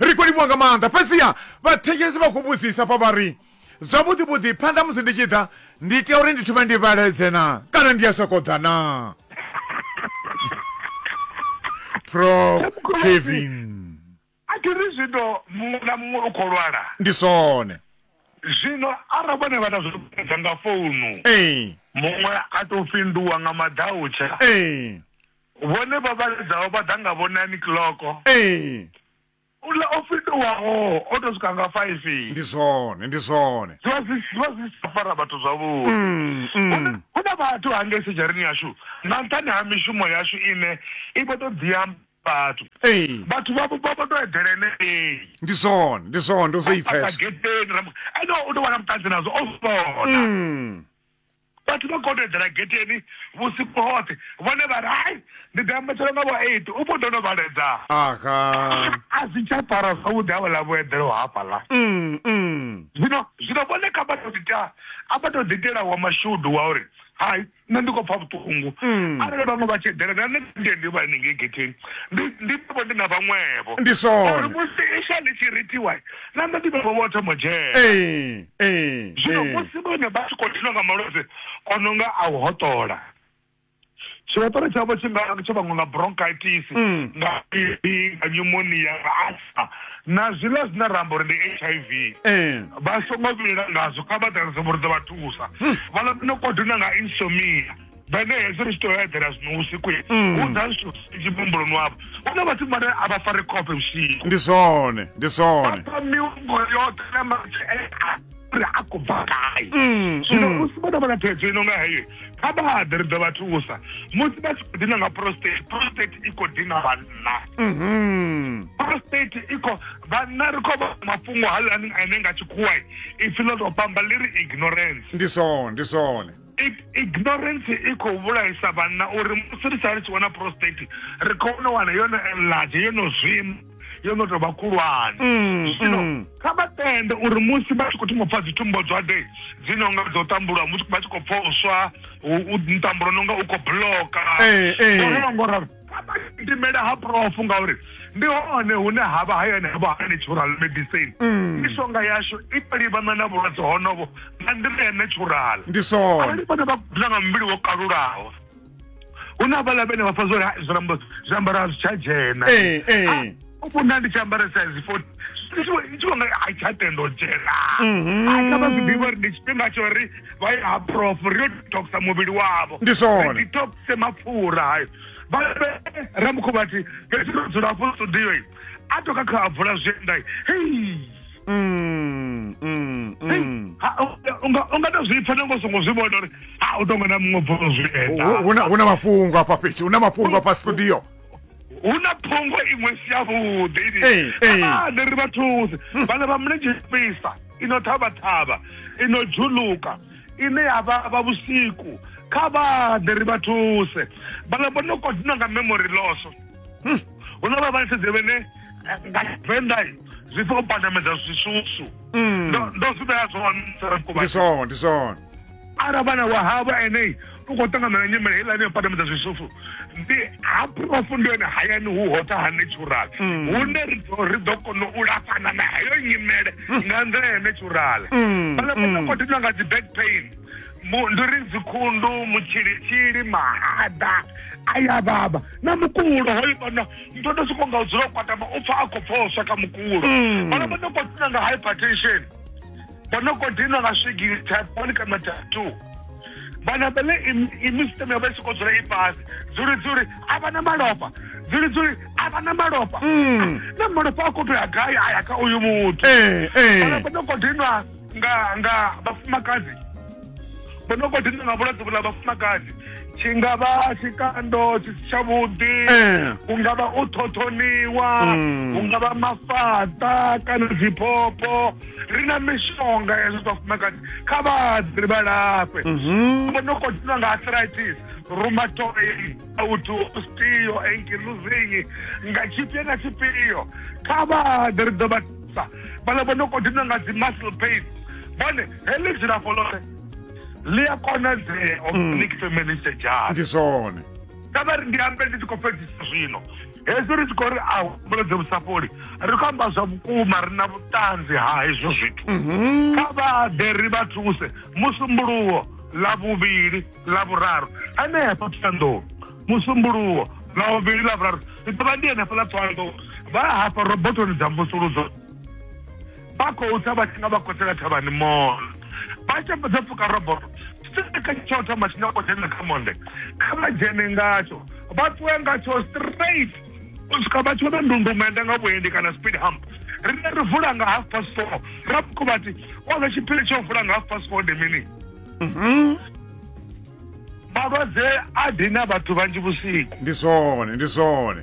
ri khou livhuwa nga maanḓa fhedziha vhathetshelesi vha khou vhudzisa fha vha ri zwavhuḓi vhuḓi phanḓa musi ndi tshi ḓa ndi tea uri ndi thome ndi vhaledze na kana ndi a sokou ḓa na prof kevin a thi ri zwino muṅwe na muṅwe u khou lwala ndi zwone zwino arali vhone vha na zwiedza nga founu ee muṅwe a tou fhinduwa nga madautsha ee Vhone vha vhaledzaho vha ḓa nga vho nine clock. Ee. Uḽa o fhindulwaho o to swika nga five. Ndi zwone, ndi zwone. Zwi vha zwi zwi vha zwi si tsha fara vhathu zwavhuḓi. Hu na vhathu hangei sedzhareni yashu nga nṱhani ha mishumo yashu ine i vho to ḓi amba vhathu. Ee. Vhathu vha vho vha vho to eḓela henengei. Ndi zwone, ndi zwone ndo zwo i pfesa. Ene u to vha na vhuṱanzi nazwo o vhona. Vhathu vha khou tou eḓela getheni vhusiku hoṱhe, vhone vha ri, Hai, ndi ḓo ambetshela nga vho eight, u vho ḓo no vhaledza. Aha! A zwi tsha fara zwavhuḓi havhaḽa vho eḓelaho hafhaḽa. Zwino, zwino vhone kha vha tou ḓi ita, a vha tou ḓi itela wa mashudu wa uri, Hai, nṋe ndi khou pfa vhuṱungu. Arali vhaṅwe vha tshi eḓela, na nṋe ndi ndi vha hanengei getheni, ndi, ndi ḓo vha ndi na vhaṅwevho. Ndi zwone. Uri musi iswa ḽi tshi rithiwa. na nṋe ndi vhaṅwe vho thoma u dzhena ee ee zwino ee musi vhone vha tshi khou dinwa nga malwadze o no nga a u hoṱola tshihoṱola tshavho tshi nga tsho vhaṅwe nga bronchitis Mm. nga pipi nga pneumonia nga asma na zwiḽa zwine ra amba uri ndi h i v ee vha songo vhilela ngazwo kha vha ḓalese vhurudza vha thusa vhala no kodona nga insomia vhane hezwi ri tshi to eḓela zwino vhusiku mm. u ḓa zwithu zwinzhi muhumbuloni wavho hu na vhathu vhane a vha fari khofhe vhusiku ndi zwone ndi zwone vha mihumbulo yoṱhe na matshe uri a khou bva gai mm, zwino mm. musi vho no vha na phedzo ino nga heyo kha vha haḓe ri ḓo vha thusa musi vha tshi khou dina nga prostate prostate i khou dina vhanna mm-hmm. prostate i khou vhanna ri khou vha mafhungo haḽani ane nga tshikhuwa ipfi ḽo tou pamba ḽi ri ignorance ndi zwone ndi zwone ignorance i khou vhulaisa vhanna uri musi ri sa ri tshi wana prostate ri khou no wana yo no enlarge yo no zwima yo no tou vha khulwane mm, zwino mm. kha vha tende uri musi vha tshi khou thoma pfa dzitumbo dzwade dzi no nga dzo tambulwa musi vha tshi khou pfoswa ntambulo no nga u khou bloka eh, eh. ngo ralo gidimele ha profu ngauri ndi hone hune ha vha hayani havho ha natural medicine mm. mishonga yashu i to livhana na vhulwadze honovo nga nḓila ya natural ndi sona arali vhone vha gudela nga muvhili wo kalulaho hu na vhaḽa vhene vha fa zwo zwiambaro a zwi tsha dzhena eh, eh. Ah, vho nda ndi tshi ambara size fourteen ndi tshi vho- ndi tshi vho nga a i tsha tenda u dzhena Mhm. a kha vha zwi ḓivha uri ndi tshifhinga tsho ri vha ye ha prof ri yo detoxa muvhili wavho Ndi zwone. Ri detoxe mapfura hayo vha vhe- ramukhu vha thi fhethu ro dzula afho studio i a toka kha a bvula zwienda i hei Mm, mm, mm. Ha, unga- unga- unga to zwi pfa nango songo zwi vhona uri ha u tonga na muṅwe bvula zwienda Hu- hu na- hu na mafhungo afha fhethu hu na mafhungo afha studio hu na phungo iṅwe si yavhuḓi Ee, ee. ane ri vha thusi vhana vha mulenzhe fhisa ino ṱhavhaṱhavha ino dzhuluka ine ya vha vha vhusiku kha vhaḓe ri vha thuse vhana vho no kodina nga memory loss hu na vha vhaletshedze vhene eh, nga venḓa zwi pfa u pandamedza zwisusu Mm. Ndo- ndo zwi vhea zwone ndi Sarafukuvhadzi. zwone ndi zwone ara vhana wa havho enei u khou ṱangamela nyimele heiḽani ya padamedza zwisufu ndi ha profu ndi yone hayani hu hotha ha natural mm. hune ri ḓo kona u lafhana na heyo nyimele mm. nga nḓila ya natural mm. vhala vha ḓo kothiwa nga dzi back pain ndi ri dzikhundu mutshilitshili mahaḓa a ya vhavha na mukulo hoyo vhana ndo ndo soko nga u dzula u kwatama u pfa a khou pfoswa kha mukulo vhala vha ḓo kothiwa nga hypertension vha no khou dinwa nga swigiri taponi kana tatu vhana vhele imisiteme yo vha i sokou dzula i fhasi dzuli dzuli a vha na malofha dzuli dzuli a vha na malofha mm. na malofha a khou tou ya gai a ya kha uyu muthu eh, eh. vhana vha no khou dinwa nga nga vhafumakadzi vha no khou dinwa nga vhulwadze vhula vhafumakadzi tshi nga vha tshikando tshi si tshavhuḓi eh. hu nga vha u ṱhoṱhoniwa mm. hu nga vha mafhaṱa kana dziphopho ri na mishonga ya zwa vhafumakadzi kha vhaḓi ri vha lafhe Mhm. vho no khou dina nga arthritis rheumatoid auto osteo ankylosing nga tshifhio na tshifhio kha vhaḓi ri ḓo vha thusa vhala vho no khou dina nga dzi muscle pain vhone heḽi dzilafho ḽoṱhe ḽi a konadzea organic feminist jazz ndi zwone kha vha ri ndi ambe ndi tshi khou fhedzisa zwino hezwi ri tshi khou ri a humbulodze vhusafholi ri khou amba zwa vhukuma ri na vhuṱanzi ha hezwo zwithu mhm. kha vha ḓe ri vha thuse musumbuluwo ḽa vhuvhili ḽa vhuraru henefha thohoyandou musumbuluwo ḽa vhuvhili ḽa vhuraru ndi ḓovha ndi henefha ḽa thohoyandou vha hafha robotoni dza mvusuludzo vha khou tsa vha tshi nga vha kosela thavhani mall vha tshi fhedza pfuka roboto kha tsho thoma tshi nyako dzhena kha monde kha vha dzhene ngatsho vha ṱuwe ngatsho straight u swika vha tshi vhona ndundumende nga vhuendi kana speed hump rine ri vula nga half past four ra vhuko vhati oza tshiphiri tsho vula nga half past four ndi mini mhm. malwadze a dina vhathu vhanzhi vhusiku ndi zwone ndi zwone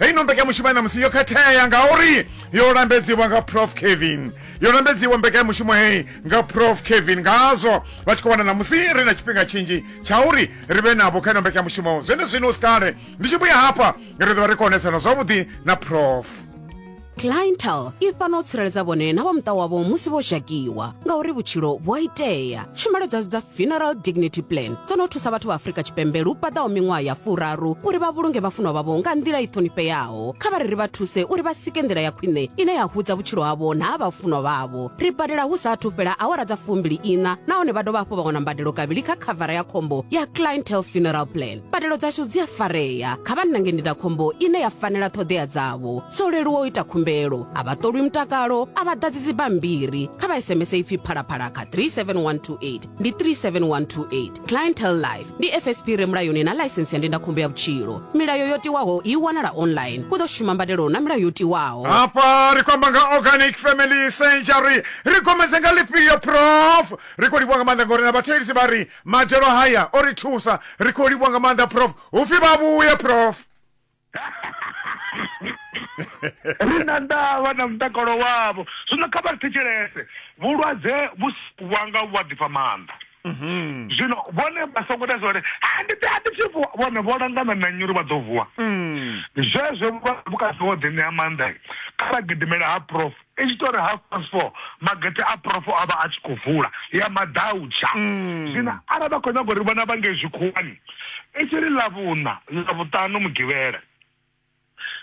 heyi no mbekanyamushumo ya namusi yo khethea ngauri yo lambedziwa nga prof kevin yo lambedziwa mbekanyamushumo heyi nga prof kevin ngazwo vha tshi khou wana namusi ri na tshifhinga tshinzhi tsha uri ri vhe navho kha ino mbekanyamushumo zwene zwino u si kale ndi tshi vhuya hafha ri ḓo vha ri khou onesana zwavhuḓi na prof clientel i fana u tsireledza vhone na vha muṱa wavho musi vho zhakiwa ngauri vhutshilo vhu a itea tshumelo dzashu dza funeral dignity plan dzo no thusa vhathu vha afrika tshipembe lu paḓaho miṅwaha ya furaru uri vha vhulunge vhafunwa vhavho nga nḓila i ṱhonifheaho kha vha ri ri vha thuse uri vha sike nḓila ya khwine ine ya hudza vhutshilo havho na ha vhafunwa vhavho ri badela hu sa athu fhela awara dza fumbili ina nahone vha dovha hafhu vha wana mbadelo kavhili kha khavara ya khombo ya clientel funeral plan mbadelo dzashu dzi a farea kha vha nange ndindakhombo ine ya fanela ṱhoḓea dzavho zwo leluwa u ita khumbelo a vha ṱolwi mutakalo a vha ḓadzi dzibammbiri kha vha sms ipfi phalaphala kha 37128 ndi 37128 clientel life ndi fsp re mulayoni na ḽaisensi ya ndindakhombo ya vhutshilo milayo yo tiwaho i wanala online u ḓo shuma mbadelo na milayo yo tiwaho hafha ri khou amba nga organic family century ri gomedze nga lifhio prof ri khou livhuwa nga maanḓa ngori na vhathelisi vha ri Madzhelo haya o ri thusa. Ri khou livhuwa nga maanḓa prof. Hu pfi vha vhuye prof. Ri na ndavha na mutakalo wavho. Zwino kha vha ri thetshelese. Vhulwadze vhu si wanga vhu a ḓifha maanḓa. Zwino vhone vha songo ita zwori, Ha ndi ḓi, a thi thi vuwa. Vhone vho langana na nnyi uri vha ḓo vuwa? Zwezwo vhukati ho ḓi ṋea maanḓa, kha vha gidimele ha prof. I tshi tou ri half past four magete a profo a vha a tshi khou vula ya maḓautsha mm. zwino arali vha khou nyaga uri vhona vha nge zwikhuwani i tshi ri ḽavhuṋa ḽavhuṱanu mugivhela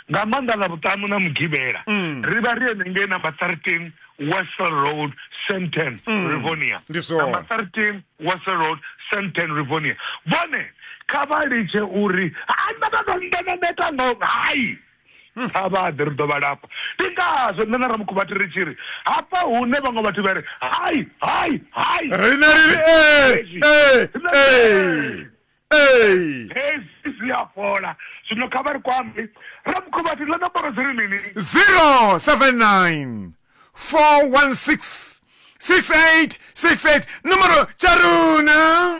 nga maanḓa ḽavhuṱanu na mugivhela mm. ri vha ri enengei number thirteen wesel road senten mm. rivonia number thirteen wesel road senten rivonia vhone kha vha litshe uri ha nda vha ndo ndeneneka ngo hai kha vha ḓe ri ḓo vha lafha ndi ngazwo nṋe na ramukhuvhati ri tshi ri hafha hune vhaṅwe vhathu vha ri hai hai hai rine ri ri hezwi zwi a fhola zwino kha vha ri kwambi ramukhuvhati ḽa nomboro dzi ri mini 079 416 6868 nomboro tsha runa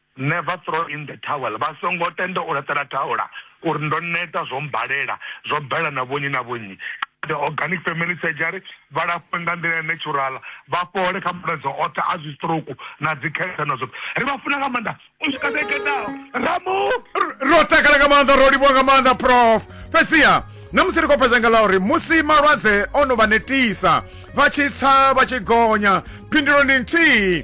Never throw in the towel, vha songo tenda u laṱela thaula u ri ndo neta, zwo mmbalela, zwo bela na vhonnyi na vhonnyi. Kha The Organic Family Surgery vha lafhwe nga nḓila ya natural, vha fhole kha malwadze oṱhe a zwistroke na dzikhensa na zwoṱhe. Ri vha funa nga maanḓa u swika vhege i ḓaho. Ramu! ro takala nga maanḓa ro livhuwa nga maanḓa prof fhedziha na musi ri khou fhedza nga ḽa uri musi malwadze o no vha netisa vha tshi tsa vha tshi gonya phindulo ndi nthihi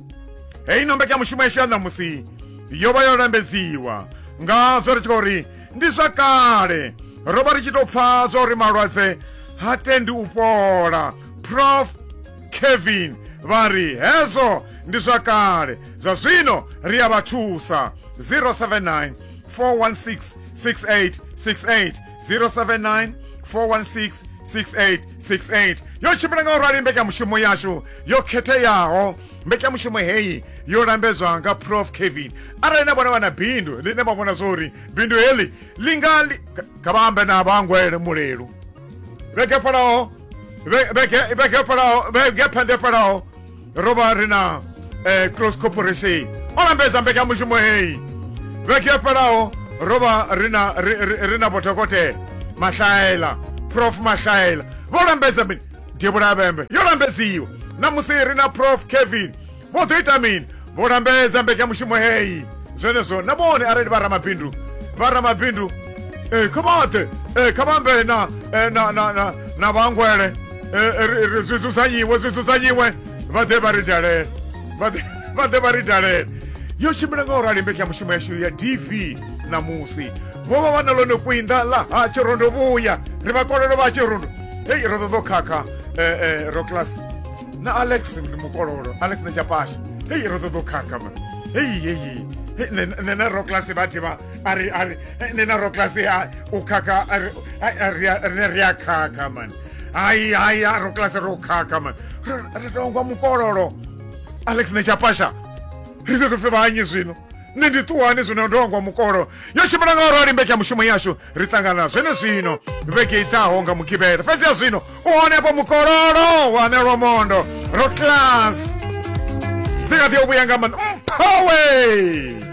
heyi no mbekanyamushumo yashu ya ṋamusi yo vha yo lambedziwa ngazwo ri tshi khou uri ndi zwa kale ro vha ri tshi tou pfha zwa uri malwadze ha tendi u fhola prof kevin vha ri hezwo ndi zwa kale zwa zwino ri a vha thusa 079 416 6868 079 416 6868 yo tshimbila nga u rali mbekanyamushumo yashu yo khetheaho mbekanyamushumo heyi yo lambedzwa nga prof kevin arali na vhona vha na bindu ḽine vha vhona zwori bindu heḽi ḽi nga li- kha- kha vha ambe na vhangwele mulelu vhege palaho vhege palaho vhege phanḓe palaho ro vha ri na eh, cross corporation o lambedza mbekanyamushumo heyi vhege yo fhelaho ro vha ri na ri- ri- ri na vhodokotela mahlaela prof mahlaela vho lambedza mini devhula vhembe yo lambedziwa namusi ri na prof kevin vho ḓo ita mini vho lambedza mbekanyamushumo heyi zwenezwo na vhone arali vha ramabindu vha ramabindu eh, kha vhaḓe eh, kha vha ambe na, eh, na, na, na, na vhangwele eh, zwi dzudzanyiwe zwi dzudzanyiwe vha ḓe vha ri dalele vha ḓe vha ri dalele yo tshimbila nga u rali mbeki ya mushumo yashu ya dv ṋamusi vho vha vha na ḽone kwinda ḽa ha tshirondo vhuya ri vha kololo vha tshirondo hei ro ṱoḓo khakha eh, eh, ro class na alex ndi mukololo alex na japasha hei ro ṱoḓo khakha ma hei hei nṋe na roclas vha ḓivha ari ari nṋe na roclas u khakha rine ri a khakha mani hayi hayi a ro kilasi ro khakha mani ri tongwa mukololo alex ne tshapasha ri ḓo tofe vhanyi zwino nṋe ndi ṱuwani zwino ndo wangwa mukololo yo tshimbila nga orali mbeke ya mushumo yashu ri ṱangana zwene zwino vhege i ḓaho nga mugivhela fhedzi ya zwino u honepo mukololo wa nelwa mondo ro class dzi kha ḓi yo vhuya nga mani mphawe